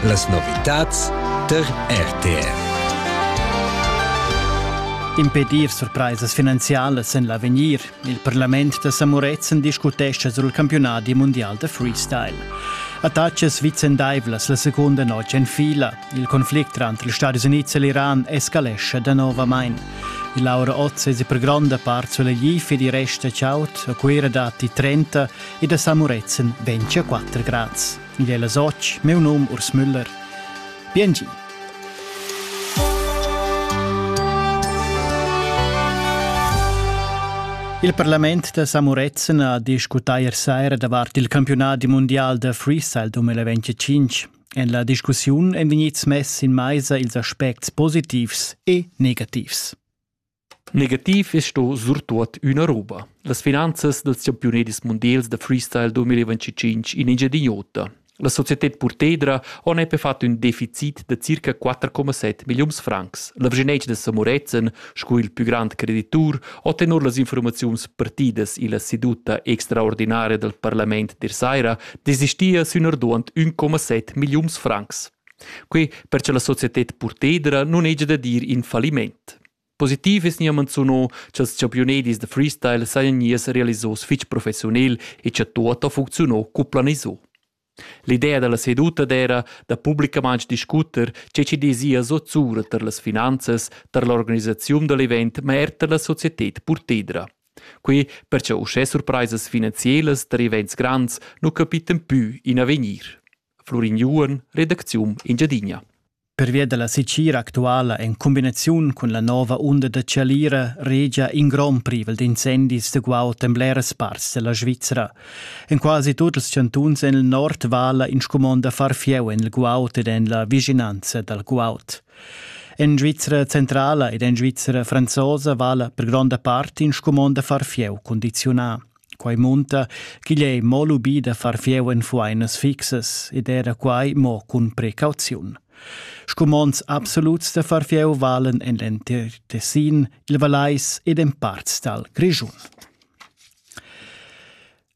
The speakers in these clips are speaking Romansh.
Las novitads tar RTR. Impedir surpraisas finanzialas en l'avegnir. Il parlament da Samuretzen discutescha sul campiunadi mundial da freestyle. Attacas vicendaivlas la seconda notg en fila. Il conflict tranter ils Stati Units e l'Iran escalescha danovamain. Laura Otz è per gronda part sulla Gifi di resta chaut, a Cuira datti 30 e da San Murezzan ventia 4 grads. Igl è las 8, meu num Urs Müller. Biengi! Il Parlament da San Murezzan ha discutà ier saira davart il campiunadi mundial da freestyle 2025. En la discussiun èn vegnids mess in maisa ils aspects positivs e negativs. Negativ es sto surtuot üna roba. Las finanzas dals champiunedis mundials da freestyle 2025 in Engiadin'Ota. La societed Purtedra on epe fat ün deficit da circa 4,7 milliuns francs. La vgenetsch da Samorezen, sco il pü grand creditur, ho tenor las informaziuns partidas illa seduta extraordinaria dal parlament der saira desistia sün arduant 1,7 milliuns francs. Quei perche la societed Purtedra nun hegia da dir in falliment. Positiv es gnir manzuno cha'ls champiunedis da freestyle sajan gnius realisos fich professiunel e cha tuot ha funcziunà cu planiso. L'idea da la seduta d'eira da publicamaing discuter che chi dezia so zura tar las finanzas, tar l'organisaziun da l'event, ma er tar la societed purtedra. Quai perche uschè surpraisas finanzielas tar events grands nu capitan pü in avegnir. Flurin Juon, redacziun Engiadina. Pervia dalla secira actuala en cumbinaziun cun la nova unda da chalira regia in grond privel d'incendis da guaud en bleras parts della Svizra. En quasi tut ils chantuns en il nord vala in scumond da far fieu en il guaud ed en la vicinanza dal guaud. En Svizra centrala ed en Svizra franzosa vala per gronda part in scumond da far fieu condizionà. Quai munta ch'igl è mo lubì da far fieu en fuainas fixas ed era quai mo cun precauziun. Scumonds absoluts da far fieu valen en l'entir Tessin, il Valais ed en parts dal Grischun.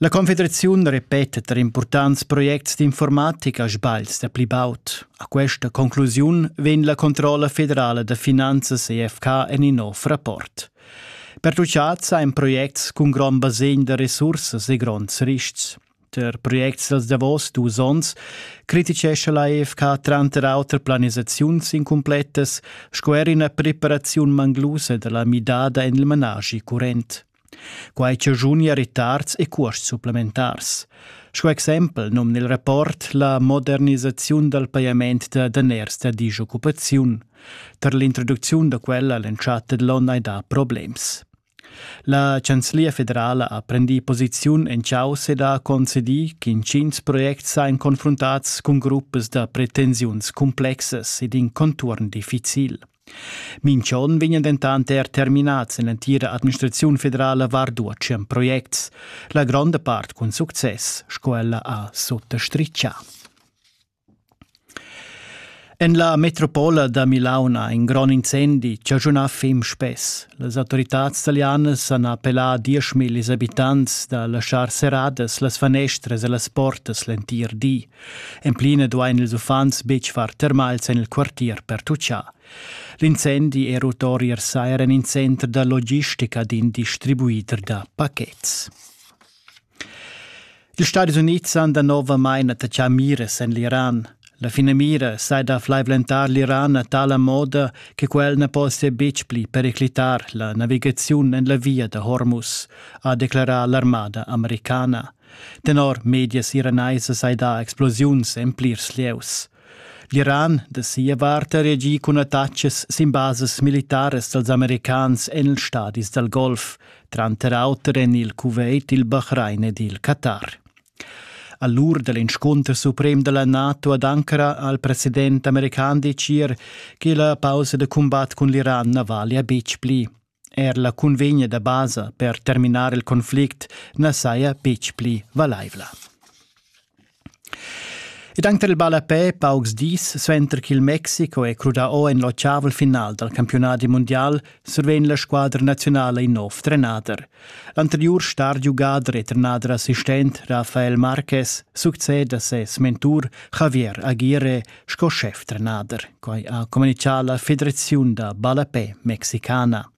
La Confederaziun repeta tar impurtants projects d'informatica sbals da pli baud. A questa conclusiun vegn la controlla federala da finanzas EFK en in nov rapport. Pertuchads ein projects cun grond basegn da resursas e gronds rischs. Per projects dals davos dus onns criticescha la EFK tranter auter planisaziuns incumplettas sco er ina preparaziun manglusa dalla midada en il manaschi current. Quai chajuni a retards e cuosts supplementars. Sco exempel nom nel rapport la modernisaziun dal pajament da daners da disoccupaziun Tar l'introducziun da quella all'entschatta dell'onn hai dà problems. La Chanzlia federala ha prendì posiziun en chaus ed ha concedì ch'intgins projects sain confruntats cun gruppas da pretensiuns complexas ed in contuorn difficil. Minch'on vegnan dentant er terminats en l'entira administraziun federala varduotschen projects, la gronda part cun success, sco ella ha sottastriccià. En la metropola da Milaun ha in grond incendi chaschunà fim spess. Las autoritads talianas han appellà dieschmillis abitants da laschar serradas las fanestras e las portas l'entir di. En plina duain ils uffants betg far termals en il quartier per tutschar. L'incendi è rut ori er sair en in center da logistica d'in distribuider da pachets. Ils Stadis Unids han danovamain attachà miras en l'Iran. La finamira sai da flaivlentar l'Iran a tala moda che quel na possia betg pli periclitar la navigaziun en la via da Hormuz, ha declarà l'armada americana. Tenor medias iranaisas hai dà explosiuns en plirs lieus. L'Iran da sia vart ha reagi cun attachas sin basas militaras dals americans en ils stadis dal Golf, tranter auter en il Kuwait, il Bahrain ed il Qatar. A l'ur da l'inscunter suprem da la NATO ad Ankara ha il president american decir che la pausa da cumbat cun l'Iran na valia betg pli. Er la cunvegna da basa per terminar il conflict na saja betg pli valaivla. Ed anche il ballapè paucs dis suenter ch'il Mexico è crudà o en l'ottavel final dal campiunat mundial survegn la squadra nazionala in nov trenader. L'anteriur star-giugader e trenader assistent Rafael Marquez succeda ses mentur Javier Aguirre sco schef-trenader, quai ha communitgà la Federaziun da ballapè mexicana.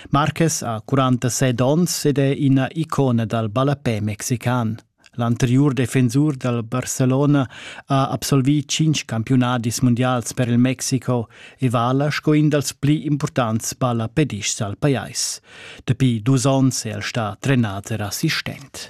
Marquez ha 47 onns ed è ina icona dal ballapè mexican. L'anteriur defensur dal Barcelona ha absolvì cinq campiunadis mundials per il Mexico e vala sco in dals pli impurtants ballapedists al pajais. Dapi dus onns è el stà trenader assistent.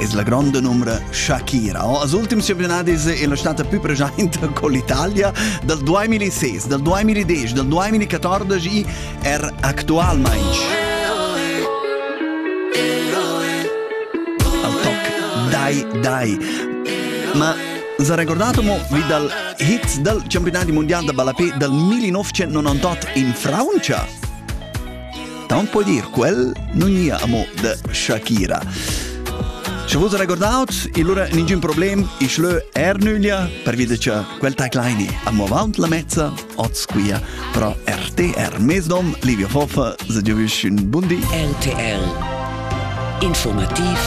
es la gronda numra Shakira. Als ultims campionadis è la stata più presente con l'Italia dal 2006, dal 2010, dal 2014 er actualmente. Al toc Dai Dai. Ma si è ricordato mo vi dal hit dal campionato mondiale da balapè dal 1998 in Francia? Taunt po dir quel non gnea amo da Shakira. Sche vos recordaut, il lura ningün problem, ich lö er nüglia, per via de cha quel taglaini amo avaunt la mezza, oz quia pro RTR. Mesdom, Livio Hoffa, se giovisch un bundi. RTR. Informativ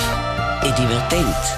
e divertent.